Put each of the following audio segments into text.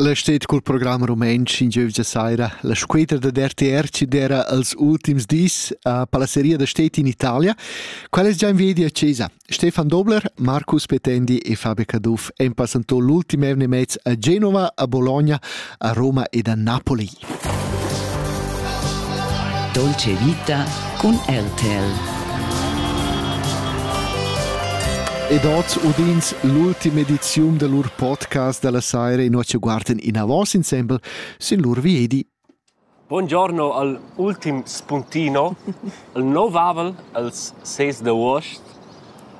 L'estetic cul program rumentsch in giövgia saira la scuetra dad RTR chi d'eira als ultims dis a Palaceria da Städte in Italia. Quel es già in viedi a chesa. Stefan Dobler, Marcus Petendi e Fabio Caduff han passantò l'ultim evenimaints a Genova, a Bologna, a Roma ed a Napoli. Dolce Vita cun RTL. Ed oz udins l'ultima ediziun del lur podcast della saira in ci guarden in avos insembel sin lur viedi. Buongiorno al ultim spuntino, al novavel als ses de uost.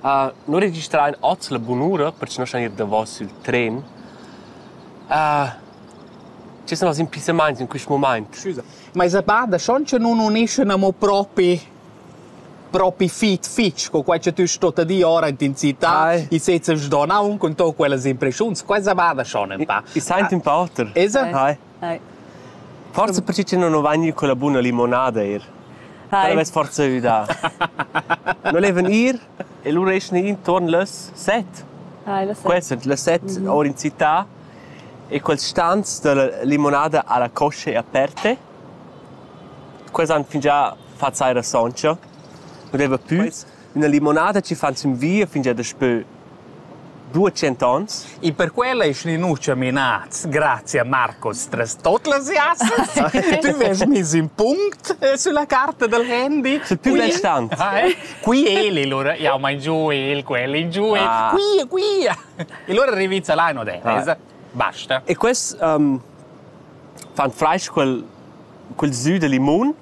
Uh, non registrain oz la bunura perché non san ir davos il tren. Uh, Che sun els impissamaints in quist mumaint? Scusa, ma esa pa da schon cha nun uneschan amo propi propi fit fich co quai cha tü stot dir ora in città. Ai. I sezza sdonà un cun to quellas impreschiuns. Quella va da schon ün pa. I saint ün pa oter. Esa? Hai. Hai. Forza perche che non ho vagni con la buna limonada eir. Hai. Quella vess forza üdà. Non levan ir, E lura eschan i intuorn las set. Ah, las set. Quels sun las set our in città e quels stans da la limonada a la coscia e aperte. Quels han fingià fat saira soncha. Nu deva pü üna limonada chi fan sün via fingià daspö Buca tschent'onns. In per quella ei Schlinuccia menats grazia a Marcos tras tot las jassas. Tü vest mis ün punct eh, sulla carta del handy. Sei più restant. Ah, eh? Qui el, allora jau mein giù el, quelli giù el. Ah. Qui, qui. E allora rivizza là in odessa. Basta. E quest um, fan freisch quel, quel sü de limon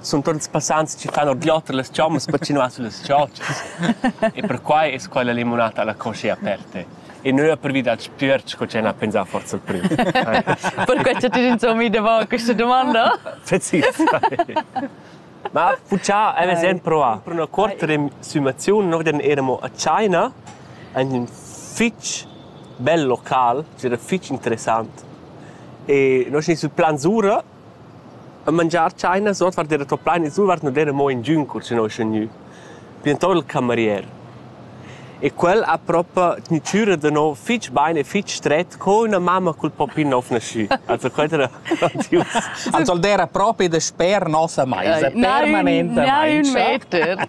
Sun tuot ils passants chi fan ordioter las chommas pacinuà süllas chautschas e perquai es quella limunata la coscia aperta e nu ha pervi dal spüerch co ch'el ha pensà forsa il prüm. Perquai cha ti insommi davant questa domanda? Precisamente. Ma fuchà avais sen provà per üna cuorta resumaziun. Noi den eramo a China, ein ün fich bel local, c'era fich interessant. E noi schi sul Plan Sura E mangiar tschainas ordvart era tuorplain e survart non era mo ingün cur che noi sün gnü, bientôt il camerier. E quel ha propa tgnü chüra da nouv fich bain e fich stret co üna mamma cul poppin nouv naschü. Also quel era grandius. Also el d'era propi dasper nossa maisa, permanentamaing. Nein, un meter.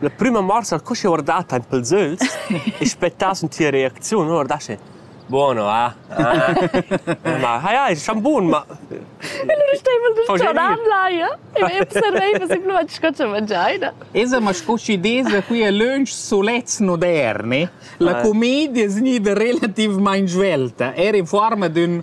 La prüma morsa co chi ho guardà tain pels ögls e aspettà sün tia reacziun, uno guardasce buono, ah? Ah? Ma ha ja, il sciambun, ma Lu staiva il dischadam là, ja? E observaiva simplamaing sco cha mangiai, da? Esa, ma sco chi desa qui a lönch solets moderni, la commedia es gnida relativmaing svelta, era in forma d'ün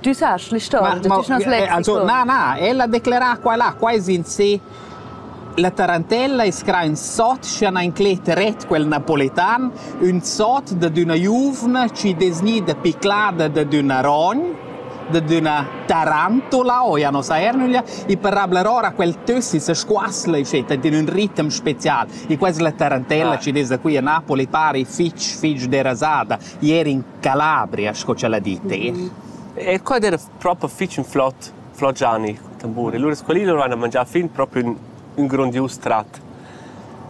tu sa schlisto na na ella declara qua là qua es in se la tarantella es cra ün sot scha na inclet ret quel napoletan ün sot da d'üna giuvna chi desni da piclada da d'üna rogn da d'üna tarantula o ja no sa ernuglia i parabla ora quel tössi se squasla e sceta in ün ritm special e quas la tarantella ah. ci des da qui a Napoli pari fitch fitch derasada ieri in Calabria sco ch'ella di ter. E quad era proper fich ün flot flot Gianni tamburi. Lura sco lì lur han mangià fin propi ün, ün grondius trat.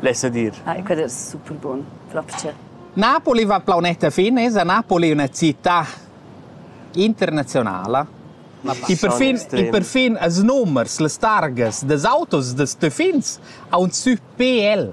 Lessa dir. Ah, e quad era super bun, propcha. Napoli va plaunetta fine, es a Napoli üna città internazionala. I per fin, i per fin as numers, las targas das autos, das töfins, a un sü PL.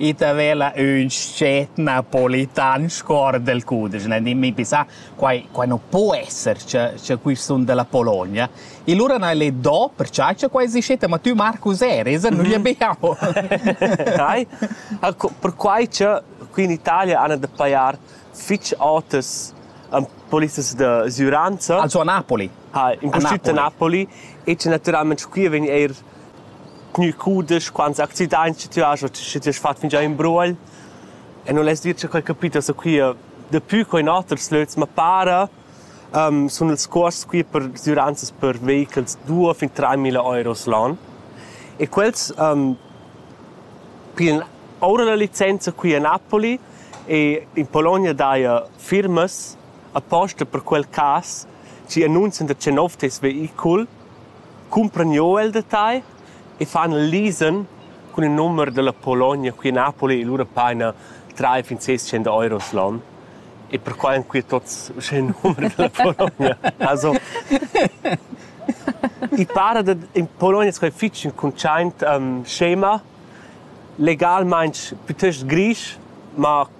Ite vela ün scet napolitan scor del cudesch, dimmi pisà, quai quai nu po esser cha cha quists sun della Pologna. E lura n'hai le do percià cha quai esistet, ma tü Marcus eris, nu gli abbiamo. Dai, perquai cha qui in Italia han da pajar fich otas polices da sgüranza. Also a Napoli. Ha, in pustüt a Napoli e cha natüralment qui vegn eir Gnü cudesch quants accidaints cha tü hast o schi ti hast fat fingià ün bruogl e nu lest dir cha quai capita saquia dapü co in oters lös, ma para sun ils cuosts qui per sgüranzas per veicels duos fin traimila euros l'on e quels piglan oura la licenza qui a Napoli e in Pologna daja firmas aposta per quel cas chi annunzian da che nouv tes veicul cumpran jeu el detagl e fan lisen cun il numer dalla Pologna qui a Napoli e lura paina trai fin ses tschient euros l'on. E perquai han quei tots uschè il numer dalla Pologna. Also i para da in Pologna sco è fitg in cuntschaint um, scema legalmaing piuttost grisch ma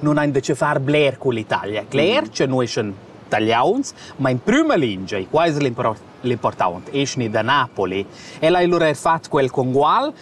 nun ein da che far bler con l'Italia. Cler che noi sun tagliauns, ma in prima lingia, e qua es l'important, esni da Napoli. Ella ha lura er fatg quel con Gual,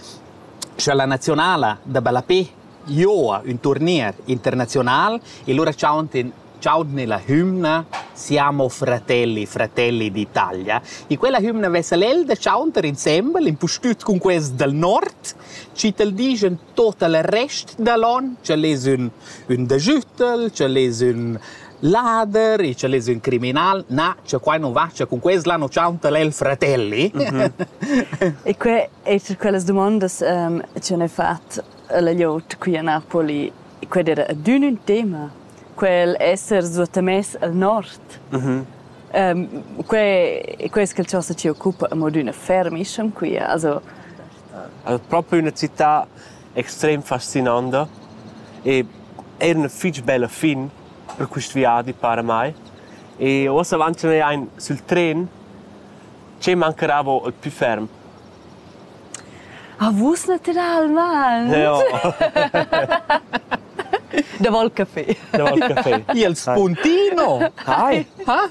sche la nazionala da ballapé joa un turnier internazional e lura ciauntin ciaudni la hymna Siamo fratelli, fratelli d'Italia. E quella hymna vesa l'el da ciaunter insembel, in pustüt cun quest dal nord, ci tal digen tot el rest dal on, ch'el es ün, ün dajütel, ch'el es ün lader e ch'el es ün criminal. Na, cha quai nu va, cha cun quest là nu chaunta el fratelli. E que è tra quellas dumondas ehm, che ne fat la gliot qui a Napoli, quel era adün ün tema, quel esser suottamess al nord. Mhm. Ehm, que, que es quel cha sa ci occupa a mod üna fermiscem qui, also El è propi üna città extrem fascinanta e eir üna fich bella fin per quist viadi para mai. E uossa avant cha neu ain sül tren, che mancheravo il pü ferm? Ah, vus naturalmaing! Ja. Davanti al café. Davanti al café. Il spuntino! Hi! Ha?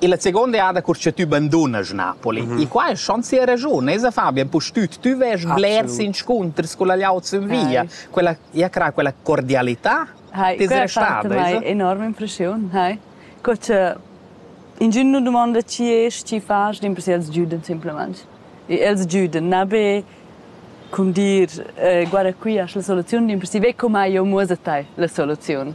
Illa seguonda eada cur cha tü bandunast Napoli. In qua es schon sia raschun, esa Fabian, pustüt tü vest blers inscunters culla glieud sün via. Quella, ja crà, quella cordialità Hai, t'es quella restada, fat mai esa? enorme impressiun, hai. Co cha ingün nu dumonda chi es, chi fas, dimpersè els güdan simplamaing. E els güdan, na be cum dir, eh, guarda qui, hast la soluziun, dimpersè ve cum hai eu muossa tai la soluziun.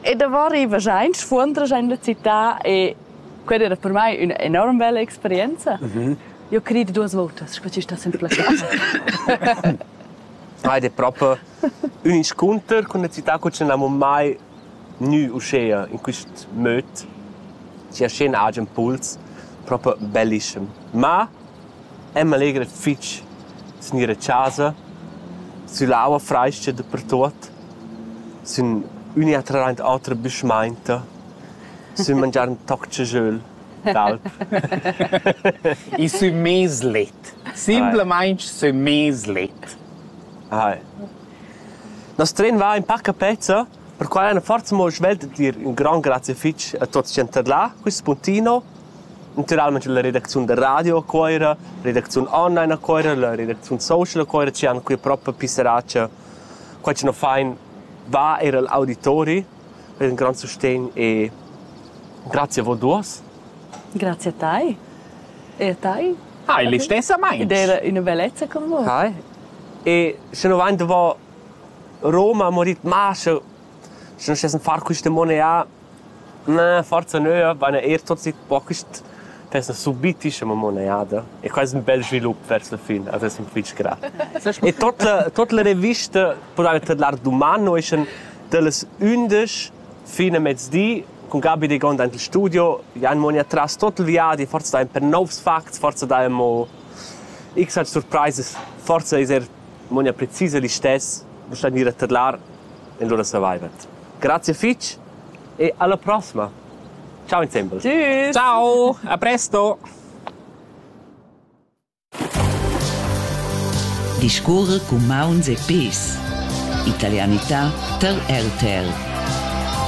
E davò rivas aint, sfuondras aint la città e quella era per mai üna enorm bella experienza. Mhm. Io crid duos votas sco chi sta sempre plaschà. Heid è proprio un incontro con una città che non avevo mai nu uscea in quest möd. Ci è scena agen puls, proprio bellissimo. Ma Emma legra fich sün ir a chasa, sün l'aua frais-cha dapertuot, sün üna e tralaint otra büschmainta, sün mangiar ün toc dschasöl d'alp. I sün mez let, simplamaing sün mez let. Hai. Nos tren va ün pa a pezza Perquai han forsa mo svelt d'ir in grond grazia fitg a tuts ch'han tadlà quist spuntino. Natüralmaing la redacziun da radio a Cuoira, la redacziun online a Cuoira, la redacziun social a Cuoira chi han quia propa pisserà cha quai chi nu fain va eir al auditori. Quai es ün grand sustegn e grazia a voi duos. Grazie a tai. E a tai. Hai, l'istessamaing. Ed era üna bellezza con voi. Hai. E sche nu vain davo Roma ha morit mâs, eu sun stes in far quista monea. Na, forsa nö, vaina eir tuot sit po quist pens subit dischemo moneada. E quai es ün bel svilup vers la fin, as es ün fich gra. E tot la tot la revista pudana tadlar duman no eschan dallas ündesch fin a mezdi cun Gabi Degonda aint il studio. Jan mo nia tras tot il viadi, forsa dain per nouvs facts, forsa dain mo x aint surpraisas, forsa ais eir Monia precisa listess per star gnir a tadlar in lura survival. Grazie fich e alla prossima. Ciao insembel. Tschüss. Ciao, a presto. Discorre cu mauns e pes. Italianità tar RTL.